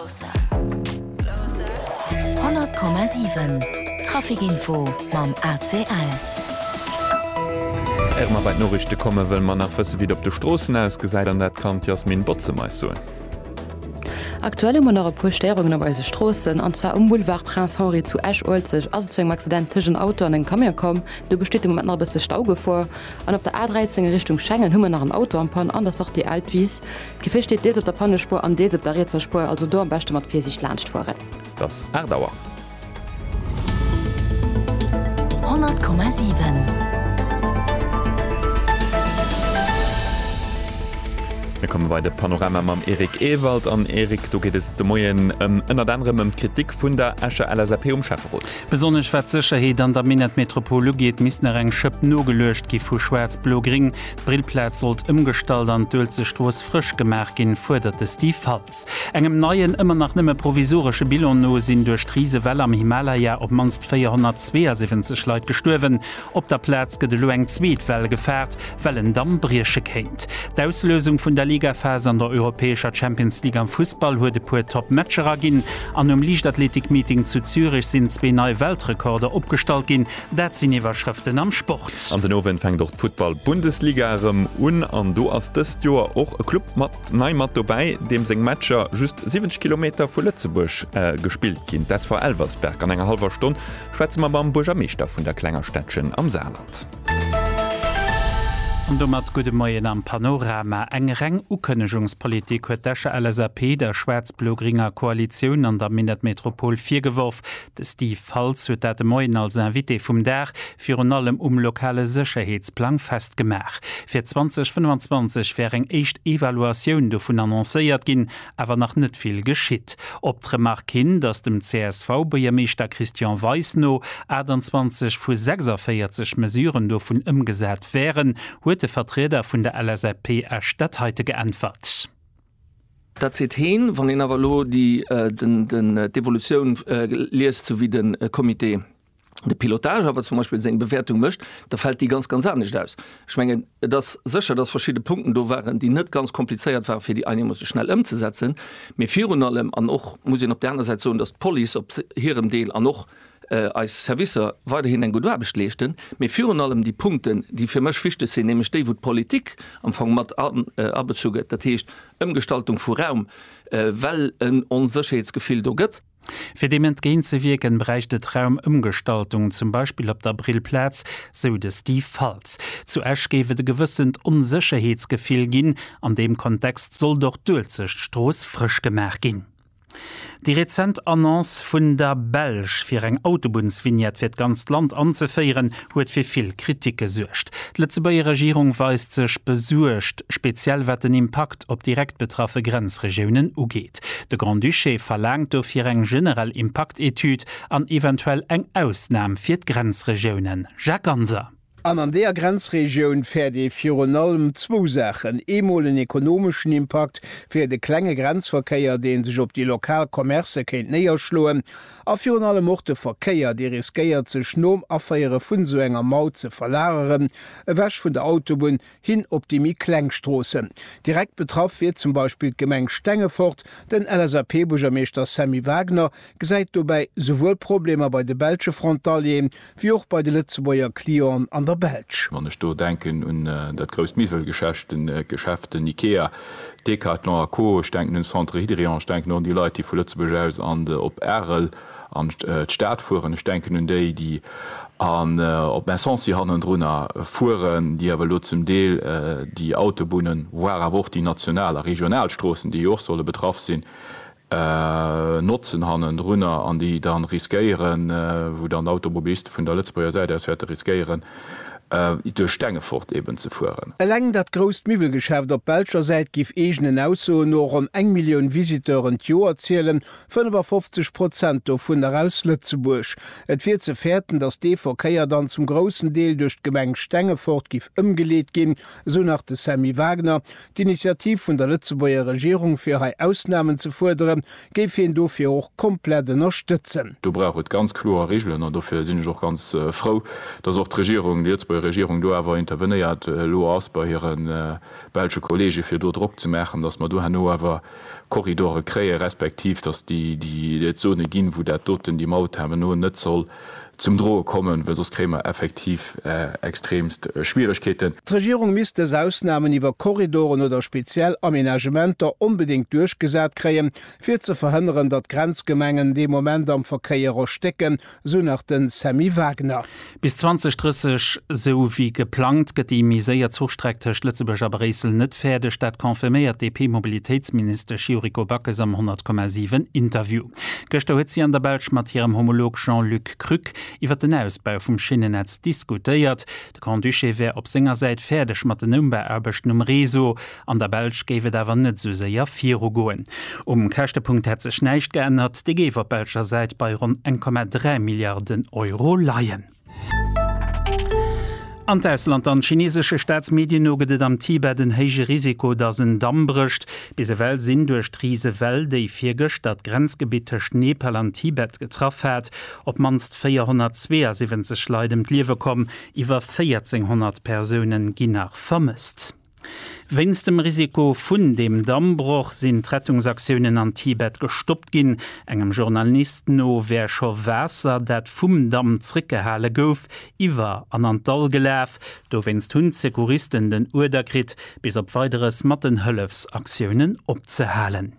100,7 Trafic Info mam ACL. Éiere mer bei d'Noriichte komme wëlle mer nach wësse wéi et op de Stroossen ausgesäit an dat kann d'Yasmine Bozem eis soen. Aktuell hu mer nach e puer Stéierungen op eise Stroossen. An zwar um Boulevard Prince Henri zu Esch-Uelzecht ass et zu engem Accident tëscht en Auto an engem Camion komm. Do besteet de Moment nach e bësse Staugefor. An op der A13 a Richtung Schengen hu mer nach en Auto am Panne an der Sortie Eltvise D'Gefier steet deels op der Pannespuer an deels op der rietser Spuer, also do am beschte mat Virsiicht laanscht fueren. Dat ass 8 Auer. 100,7. Mir komme bei de Panorama mam Eric Ewald. An Eric, do geet et de Moien ënnert anerem ëm d'Kritik vun der Escher LSAP um Schäfferot. Besonnesch wat d'Sécherheet an der Minettmetropol ugeet, misst nach eng Schëpp nogeluecht gi vu Schwaarz-Blo-Gréng. D'Brillplaz sollt ëmgestallt an d'Uelzechtstrooss frësch gemaach ginn, fuerdert de Steve Faltz. Engem neien, ëmmer nach nëmme provisoresche Bilan no sinn duerch d'Risewell am Himalaya op d'mannst 472 Leit gestuerwen. Op der Plaz gëtt elo eng zweet Well gefaart, well en Damm brieche kéint. D'Auslösung vun der Ligaphas an der europäescher Champions League am Fussball huet e puer Top Matcher erginn an um Liichtathletik-Meeting zu Zürich sinn zwee nei Weltrekorder opgestallt ginn, Dat sinn Iwwerschrëften am Sport. An den Owend fänkt och d'Futtball-Bundesliga erëm un an do ass dëst Joer och e Club mat nei mat dobäi, deem seng Matcher just 70 Kilometer vu Lëtzebuerg gespillt ginn, d'SV Elversberg. An enger hallwer Stonn schwätze mer mam Buergermeeschter vun der klenger Städtchen am Saarland. An domat gudde Moien am Panorama. Eng reng Ukënnegungspolitik huet d'Escher LSAP der schwaarz-blo-gringer Koalitioun an der Minettmetropol virgeworf. De Steve Faltz huet dat de Moien als Invité vum Dag virun allem um lokale Sécherheetsplang festgemaach. Fir 2025 wär eng éischt Evaluatioun dovun annoncéiert ginn, awer nach net vill geschitt. Op d'Remark hin, datt dem CSV-Buergermeeschter Christian Weis no 28 vu 46 Mesuren dovun ëmgesat wären, huet de Vertrieder vun der LSAP Esch dat heite geäntwert. Dat seet heen. Wann een awer elo déi, den, d'Evolutioun liest, esou wéi de Comité de pilotage awer zum Beispill seng Bewäertung mécht, da fält déi ganz, ganz anescht aus. Ech mengen, et ass sécher, dass verschidde Punkten do waren, déi net ganz komplizéiert waren, fir déi einegermoosse schnell ëmzesetzen. Mee virun allem, an och muss een op där aner Säit soen, dass d'Police op hirem Deel an och, eis Servicer weiderhin eng gutt Aarbecht leeschten, mee virun allem déi Punkten, déi fir mech wichteg sinn, nämlech déi, wou d'Politik am Fong mat abezu gëtt, dat heescht Ëmgestaltung vu Raum, well en Onsécherheetsgefill do gëtt. Fir deem entgéint ze wierken, bräicht et Raumëmgestaltung, zum Beispill op der Brillplaz, sou de Steve Faltz. Zu Esch géif et e gewëssent Onsécherheetsgefill ginn. An deem Kontext sollt och d'Uelzechtstrooss frësch gemaach ginn. Déi rezent Annonce vun der Belsch, fir eng Autobunnsvignette fir d'ganzt Land anzeféieren, huet fir vill Kritik gesuergt. D'Lëtzebuerger Regierung weist sech besuergt, speziell wat den Impakt op direkt betraffe Grenzregiounen ugeet. De Grand-Duché verlaangt dofir eng generell Impaktetüd an eventuell eng Ausnam fir d'Grenzregiounen. Jacques Ganser. An an deeër Grenzregioun fäert ee virun allem zwou Saachen, eemol en ekonomeschen Impakt fir de klenge Grenzverkéier, dee sech op déi lokal Commercë kéint néierschloen, a virun allem och de Verkéier, dee riskéiert sech nom Aféiere vun esou enger Maut ze verlageren, ewech vun der Autobunn hin op déi méi kleng Stroossen. Direkt betraff wier zum Beispill d'Gemeng Stengefort, den LSAP-Buergermeeschter Sammy Wagner, gesäit dobäi souwuel Problemer bei de belsche Frontalieren, wéi och bei de Lëtzebuerger Clienten an der Belsch. Wann ech do denken un dat grousst Miwwelgeschäft, den Ikea, Decathlon a Co. Ech denken un de Centre Hydrion, ech denken och un déi Leit, déi vu Lëtzebuerg aus an op Arel an d'Stad fueren, ech denken un déi, déi an op Messancy hannendrunner fueren, déi awer elo zum Deel déi Autobunnen, voire awer och déi national a regional Stroossen, déi jo och solle betraff sinn, Notzen hannendrunner an déi dann riskéieren, wou dann d'Automobiliste vun der Lëtzebuerger Säit aus wäerte riskéieren, duerch Stengefort eeben ze fueren. Eleng dat grousst Miwwelgeschäft op belscher Säit giff eegenen Aussoen no ronn eng Millioun Visiteuren d'Joer zielen, 55 Prozent dovunner aus Lëtzebuerg. Et wier ze fäerten, datt dee Verkéier dann zum groussen Deel duerch d'Gemeng Stengefort giff ëmgeleet ginn, esou nach de Sammy Wagner, D'Initiativ vun der Lëtzebuerger Regierung, fir hei Ausnamen ze fuerderen, géif hien dofir och komplett ënnerstëtzen. Do brauch et ganz kloer Regelen an dofir sinn ech och ganz frou, dass och d'Regierung, déi Lëtzebuerger Regierung do awer intervenéiert elo ass bei hire belsche Kollege fir do Drock ze maachen, dass mer do herno awer Korridore kréie respektiv dass et Zone ginn, wou dat doten, déi Maut herno net soll Zum Droe kommen, well soss kréie mer effektiv extremst Schwieregkeeten. D'Regierung misst dës Ausnahmen iwwer Korridoren oder speziell Aménagementer onbedéngt duerchgesat kréien, fir ze verhënneren, datt d'Grenzgemengen dee Moment am Verkéier erstécken, sou nach de Sammy Wagner. Bis 2030, sou wéi geplangt, gëtt déi méi séier Zuchstreck tëscht Lëtzebuerg a Bréissel net fäerdeg. Dat confirméiert d'DP-Mobilitéitsministesch Yuriko Backes am 100,7 Interview. Gëschter huet si an der Belsch mat hirem Homolog Jean-Luc Krück iwwer den Ausbau vum Schinnennetz diskutéiert. De Grand-Duché wär op senger Säit fäerdeg mat den Ëmbauaarbechten um Réseau. An der Belsch géif et awer net esou séier virugoen. Um Käschtepunkt hätt sech näischt geännert, dee géif op belscher Säit bei ronn 1,3 Milliarden Euro leien. An d'Ausland dann, Chineesesche Staatsmedien no gëtt et am Tibet en héije Risiko, datt en Damm brécht. Bis ewell sinn duerch d'rise Well, déi virgëschter d'Grenzgebitt tëscht Nepal an Tibet getraff hat, op d'mannst 472 Leit ëm d'Liewe komm. Iwwer 1.400 Persoune gi nach vermësst. Wéinst dem Risiko vun deem Dammbroch sinn d'Rettungsaktiounen an Tibet gestoppt ginn. Engem Journalist no wär scho Waasser, dat vum Damm zréckgehale gouf, iwwer an an d'Dall gelaf. Dowéinst hunn d'Secouristen den Uerder kritt, bis op Weideres mat den Hëllefsaktiounen opzehalen.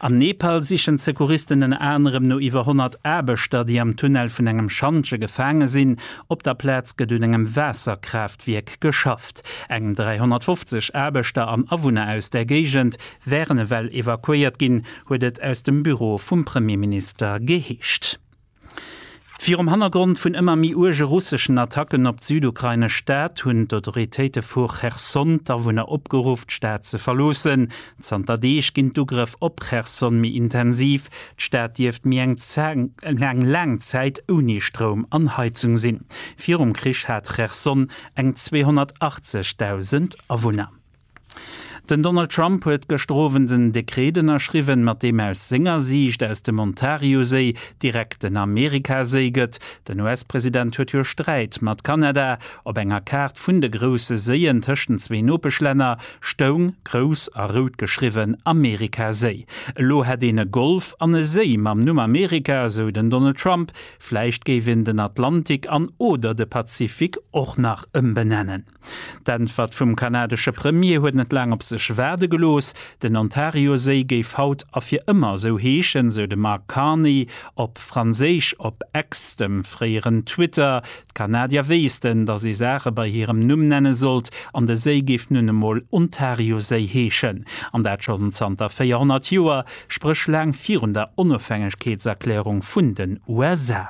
Am Nepal sichen d'Secouristen ënner anerem no iwwer 100 Aarbechter, déi am Tunnel vun engem Schantje gefaange sinn. Op der Plaz gëtt un engem Waasserkraaftwierk geschafft. Eng 350 Aarbechter an Awunner aus där Géigend wären ewell evakuéiert ginn, huet et aus dem Büro vum Premierminister geheescht. Virum Hannergrond vun ëmmer méi uerge russeschen Attacken op d'südukrainesch Stad hunn d'Autoritéite vu Cherson d'Awunner opgeruff, d'Stad ze verloossen. Zanter Deeg ginn d'Ugrëff op Cherson méi intensiv. D'Stad dierft méi eng laang Zäit ouni Stroum an Heizung sinn. Virum Krich hat Cherson eng 280.000 Awunner. Den Donald Trump huet gëschter Owend en Dekret ënnerschriwwen, mat deem aus senger Siicht aus dem Ontarioséi direkt den Amerikaséi gëtt. Den US-President huet jo Sträit mat Kanada. Op enger Kaart vun de grousse Séien tëscht den zwee Nopeschlänner stoung grouss a rout geschriwwen Amerikaséi. Elo hätt een e Golf an e Séi mam Numm Amerika, esou den Donald Trump. Vläicht géif een den Atlantik an oder de Pazifik och nach ëmbenennen. D'Äntwert vum kanadesche Premier huet net laang op sech waarde gelooss. Den Ontarioséi géif haut a fir ëmmer esou heeschen, sou de Mark Carney op Franséisch op X, dem fréieren Twitter. D'Kanadier wéissten, datt ee Saache bei hirem Numm nenne sollt, an de Séi géif nun emol Ontarioséi heeschen. An dat schonn zanter 400 Joer, spréch laang virun der Onofhängegkeetserklärung vun den USA.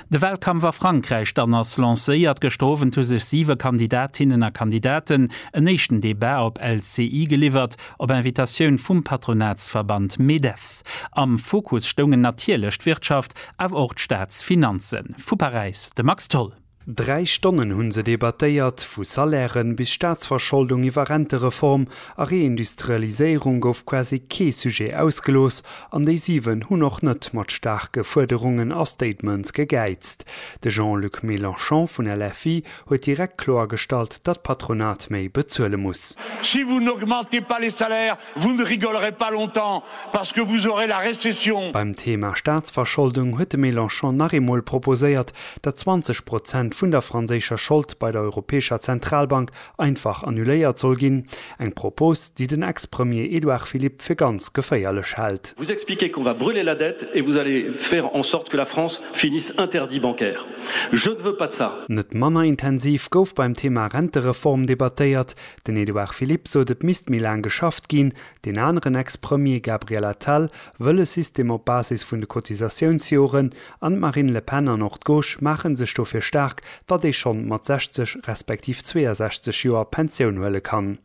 De Wahlkampf a Frankräich dann ass lancéiert. Gëschter Owend hu sech siwe Kandidatinnen a Kandidaten en éischten Debat op LCI geliwwert, op Invitatioun vum Patronatsverband Medef. Am Fokus stoungen natierlech d'Wirtschaft, awer och d'Staatsfinanzen. Vu Paräis de Max Tholl. Dräi Stonnen hunn se debattéiert, vu Salairen bis Staatsverscholdung iwwer Rentereform a Reindustrialiséierung gouf quasi kee Sujet ausgelooss an déi 7 hunn och net mat staarke Fuerderungen a Statements gegäizt. De Jean-Luc Mélenchon vun LFI huet direkt kloergestallt, datt d'Patronat méi bezuele muss. Si vous n'augmentez pas les salaires, Vous ne rigolerez pas longtemps parce que vous aurez la récession. Beim Thema Staatsverscholdung huet de Mélenchon nach eemol proposéiert, datt 20 Prozent vun der franséischer Schold bei der Europäescher Zentralbank einfach annuléiert soll ginn, eng Propos, déi den Ex-Premier Édouard Philippe fir ganz geféierlech hält. Vous expliquez qu'on va brûler la dette et vous allez faire en sorte que la France finisse interdit bancaire. Je ne veux pas de ça. Net manner intensiv gouf beim Thema Rentereform debattéiert, Den Edouard Philippe sot et misst méi laang geschafft ginn, deen aneren Ex-Premier Gabriel Attal wëll e System op Basis vun de Cotisatiounsjoren an d'Marine Le Pen an och d'Gauche maache sech dofir staark, datt ee schonn mat 60 respektiv 62 Joer Pensioun huele kann.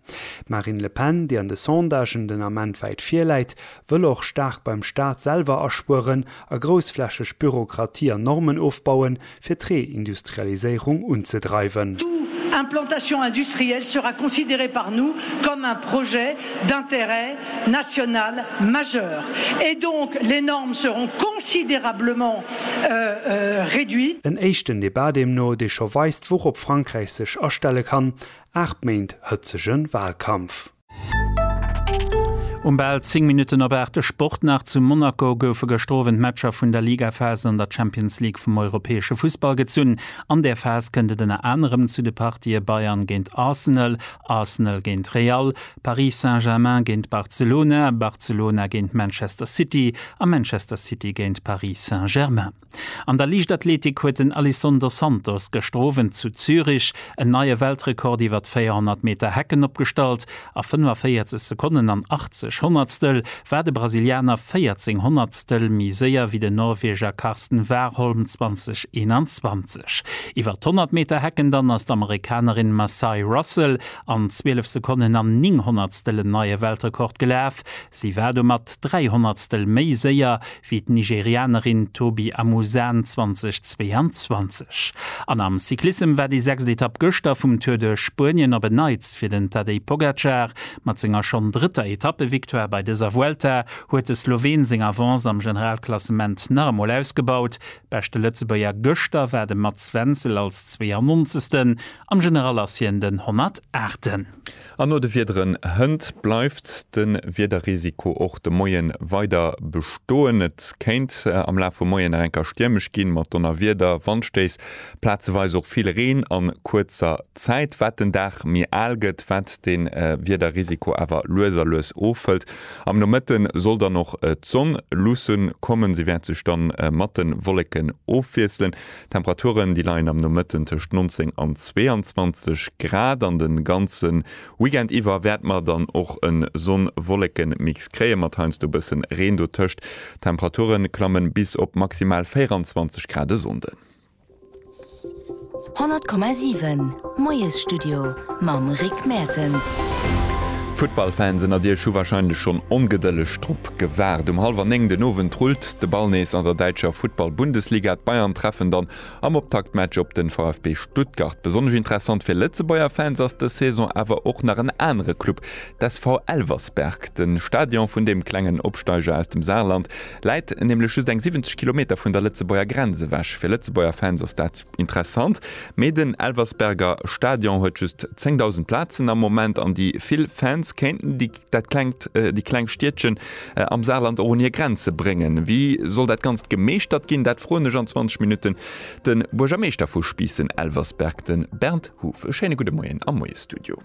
D'Marine Le Pen, déi an de Sondagen den Ament wäit vir läit, wëll och staark beim Staat selwer aspueren a groussflächeg Bürokratie an Normen ofbauen, fir d'Reindustrialiséierung unzedreiwen. Tout implantation industrielle sera considérée par nous comme un projet d'intérêt national majeur et donc les normes seront considérablement réduites. En éischten Debat deemno, dee scho weist, wourop Frankräich sech astelle kann, Aacht Méint hëtzege Wahlkampf. Um bal 10 Minutten op 8 de Sport nach. Zu Monaco goufe gëschter Owend d'Matcher vun der Ligaphase an der Champions League vum europäesche Fussball gezunn. An där Phas kënnt et ënner anerem zu de Partië Bayern géint Arsenal, Arsenal géint Real, Paris Saint-Germain géint Barcelona, Barcelona géint Manchester City a Manchester City géint Paris Saint-Germain. An der Liichtathletik huet den Alison dos Santos gëschter Owend zu Zürich en neie Weltrekord iwwer d'Véierhonnert Meter Hecken opgestallt. A 45 Sekonnen an 80 Honnertstel war de Brasilianer 14 Honnertstel méi séier wéi den Norweger Karsten Warholm 2021. Iwwer d'Honnert Meter Hecken dann ass d'Amerikanerin Massai Russell an 12 Sekonnen an 9 Honnertstel en neie Weltrekord gelaf. Si war domat 3 Honnertstel méi séier wéi d'Nigerianerin Tobi Amusan 2022. An am Cyclissem war déi sechst Etapp gëschter vum Tour de Spuenien op en Neits fir den Tadej Pogacar. Mat senger schonn drëtter Etappevictoire bei dëser Vuelta huet de Sloween seng Avance am Generalklassement nach emol ausgebaut. Beschte Lëtzebuerger gëschter war de Mats Wenzel als 92. Am General ass hien den 108. An no de Wiederen hënt bleift de Wiederrisiko och de Moie weider bestoen. Et kéint am Laf vum Moien nach eng Kéier stiermesch ginn, mat Donnerwieder, Wandstéiss, plazeweis och vill Reen a kuerzer Zäit. Wat den Dag méi al gëtt, wat de Wiederrisiko awer lues a lues ofhëlt. Am Nomëtte soll dann och d'Sonn luussen kommen, si wäert sech da mat de Wolleken ofwiesselen. D'Temperaturen, déi leien am Nomëtten tëscht 19 an 22 Grad an de ganze Weekend iwwer wäerte mer dann och e Sonn-Wolleken-Mix kréien, mat heiansdo e bësse Reen dotëscht. D'Temperatuere klamme bis op maximal 24 Grad e Sonnden. 100,7 Moiesstudio mam Rick Mertens. Futtballfans ënnert iech hu warscheinlech schonn ongedëlleg drop Gewaart. Um hallwer 9 den Owend rullt de Ball nees an der däitscher Futtball-Bundesliga. D'Bayern treffen dann am Optaktmatch op den VfB Stuttgart. Besonnesch interessant fir Lëtzebuerger Fans ass dës Saison awer och nach en anere Club, d'SV Elversberg. Den Stadion vun deem klengen Opsteiger aus dem Saarland läit nämlech just eng 70 Kilometer vun der Lëtzebuerger Grenz ewech. Fir Lëtzebuerger Fans ass dat interessant, mee den Elversberger Stadion huet just 10.000 Plazen am Moment an déi vill Fans kéinten déi. Dat klengt déi kleng Stiedchen am Saarland och un hir Grenze bréngen. Wéi soll dat Ganzt gemeeschtert ginn? Dat froen ech an 20 Minutten de Buergermeeschter vu Spiissen-Elversberg, de Bernd Huff. E schéine gudde Moien am Moie-Studio.